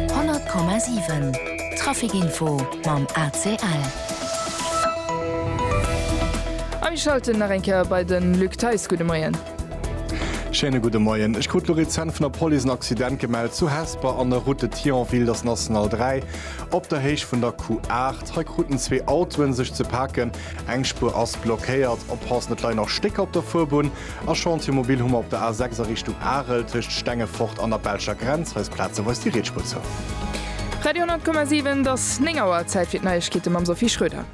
100,7 Trafic-Info mam ACL. A mir schalten nach eng Kéier bei de Luc Theis. Gudde Moien. Schéine gudde Moien. Ech krut elo rezent vun der Police en Accident gemellt zu Hesper an der Route de Thionville. Dat ass National 3 op der Héicht vun der Q8. Hei kruten zwee Autoen sech ze paken. Eng Spuer ass blockéiert. Oppassen, et leien nach Stécker op der Fuerbunn. A Chantier mobil hu mer op der A6 a Richtung Arel, tëscht Stengefort an der belscher Grenz. Hei ass plazeweis déi Rietspuer zou. Radio 10,7 't ass 9 Auer, Zäit fir d'Neiegkeete mam Sophie Schröder.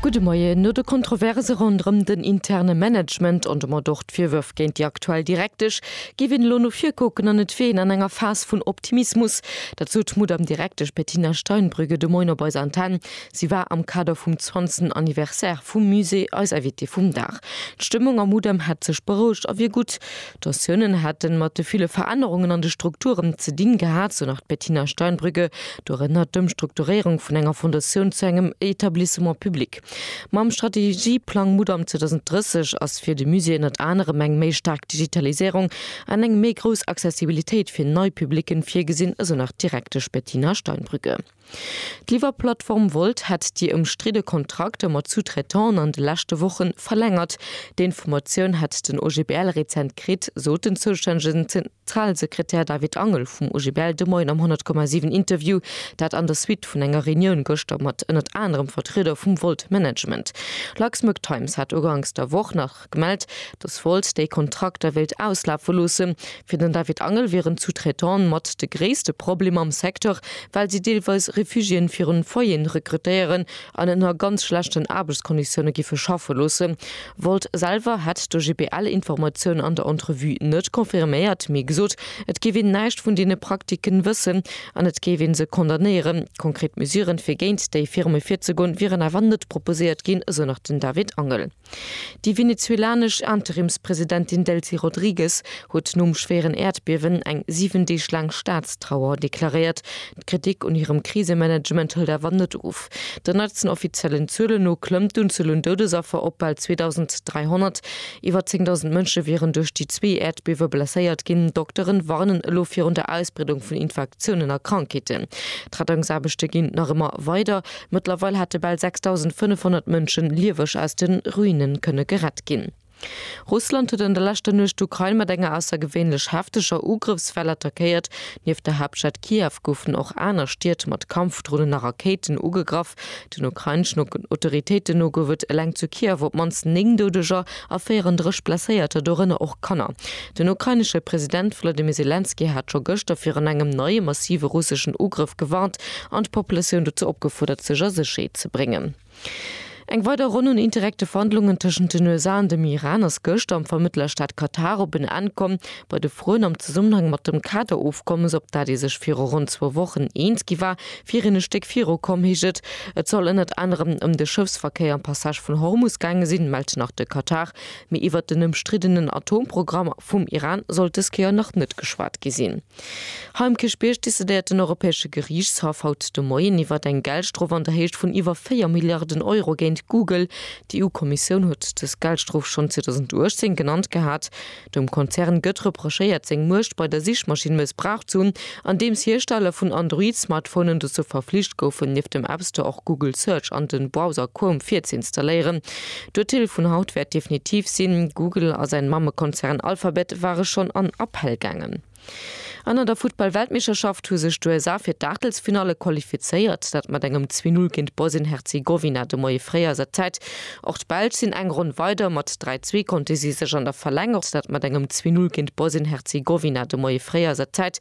Gudde Moien. No de Kontroverse ronderëm den interne Management an domat och D'Virwërf géint déi aktuell Direktesch géif een elo no vir kucken an et wier een an enger Phas vun Optimismus. Dat sot d'Mudamm Direktesch Bettina Steinbrügge de Moien op eiser Antenn. Si war am Kader vum zwanzten Anniversaire vum Musée eis Invitée vum Dag. D'Stëmmung am Mudamm hätt sech berouegt a wier gutt. D'Tensiounen hätte mat de ville Verännerungen an de Strukturen ze dinn gehat, sou nach d'Bettina Steinbrügge, dorënner d'Ëmstrukturéierung vun enger Fondatioun zu engem Etablissement public. Mam Strategieplang Mudam 2030 ass fir de Musée ënnert anerem eng méi staark Digitalisierung an eng méi grouss Accessibilitéit fir nei Publicken virgesinn, esou nach d'Direktesch Bettina Steinbrügge. D'Liwwerplattform Wolt hätt déi ëmstridde Kontrakter mat Sous-traitanten an de leschte Woche verlängert. Déi Informatioun hätt den OGBL rezent kritt, sot den zoustännegen. Trell, Sekretär David Angel vum OGBL, de Moien am 100,7 Interview, dat an der Suite vun enger Reunioun gëschter mat ënnert anerem Vertrieder vum Volt Management. Luxembourg Times hat uganks der Woch nach gemellt, datt Volt déi Kontrakter wéilt auslafe loossen. Fir den David Angel wieren d'Sous-traitante mat de gréisste Problem am Secteur, well si deelweis Refugiéen virun Foyeren rekrutéieren, an ënner ganz schlechten Aarbechtskonditioune giffe schaffe loosse wollt. Selwer hätt de GBL Informatiounen an der Entrevue net confirméiert, mee gesot, et géif een näischt vun deene Praktiken wëssen an et géif ee se condamnéieren. Konkret Mesuren, fir géint déi Firme virzegoen, wieren awer net proposéiert ginn, esou nach den David Angel. Déi venezuelanesch Interimspresidentin Delcy Rodriguez huet nom schwéieren Äerdbiewen eng 7 Deeg laang Staatstrauer deklaréiert. D'Kritik un hirem Krisemanagement hëlt awer net of. Den neitsten offiziellen Zuelen no klëmmt d'Unzuel un Doudesaffer op bal 2.300. Iwwer 10.000 Mënsche wieren duerch déi zwee Äerdbiewe blesséiert ginn. Dokteren warnen elo virun der Ausbreedung vun Infektiounen a Krankheeten. D'Rettungsaarbechte ginn nach ëmmer weider. Mëttlerweil hätte bal 6.500 Mënsche lieweg aus de Ruine kënne gerett ginn. Russland huet an der leschter Nuecht d'Ukrain mat enger aussergewéinlech hefteger Ugrëffswell attackéiert. Nieft der Haaptstad Kiew goufen och aner Stied mat Kampfdronen a Rakéiten ugegraff. Den ukraineschen Autoritéiten no gouf et eleng zu Kiew op d'mannst néng Doudeger. a 34 Blesséierter, dorënner och Kanner. Den ukrainesche President Wolodymyr Selenskyj hat scho gëschter virun engem neie massive russeschen Ugrëff gewarnt an d'Populatioun dozou opgefuerdert, sech a Sécherheet ze bréngen. Eng weider Ronn un indirekte Verhandlungen tëschent den USA an dem Iran ass gëschter am Vermëttlerstaat Katar op en Enn komm. Bei de Froen am Zesummenhang mat dem Kader-Ofkommes, op dat ee sech viru ronn zwou Wochen eens gi war, Fir een e Stéck viru komm, heescht et. Et soll ënnert anerem ëm de Schëffsverkéier am Passage vun Hormus gaange sinn, mellt nach de Katar. Mee iwwert den ëmstriddenen Atomprogramm vum Iran sollt dës Kéier nach net geschwat gi sinn. Hei um Kierchbierg decidéiert den Europäesche Geriichtshaff haut de Moien iwwert eng Geldstrof an der Héicht vun iwwer 4 Milliarden Euro géint Google. D'EU-Kommissioun huet dës Geldstrof schonn 2018 genannt gehat. Dem Konzern gëtt reprochéiert, seng Muecht bei der Sichmaschinn mëssbraucht ze hunn, andeems Hiersteller vun Android-Smartphonen dozou verflicht goufen, nieft dem App Store och Google Search an de Browser Chrome virzeinstalléieren. D'Urteel vun haut wäert definitiv sinn. Google a säin Mammekonzern Alphabet ware schonn an Appell gaangen. An an der Futtball-Weltmeeschterschaft hu sech d'USA fir d'Aachtelsfinalle qualifizéiert. Dat mat engem 2 Null géint Bosnien-Herzegowina de Moie fréi a se Zäit. Och d'Belsch sinn eng Ronn weider. Mat 3 Zwee konnte si sech an der Verlänger. Dat mat engem 2 Null géint Bosnien-Herzegowina de Moie fréi a se Zäit.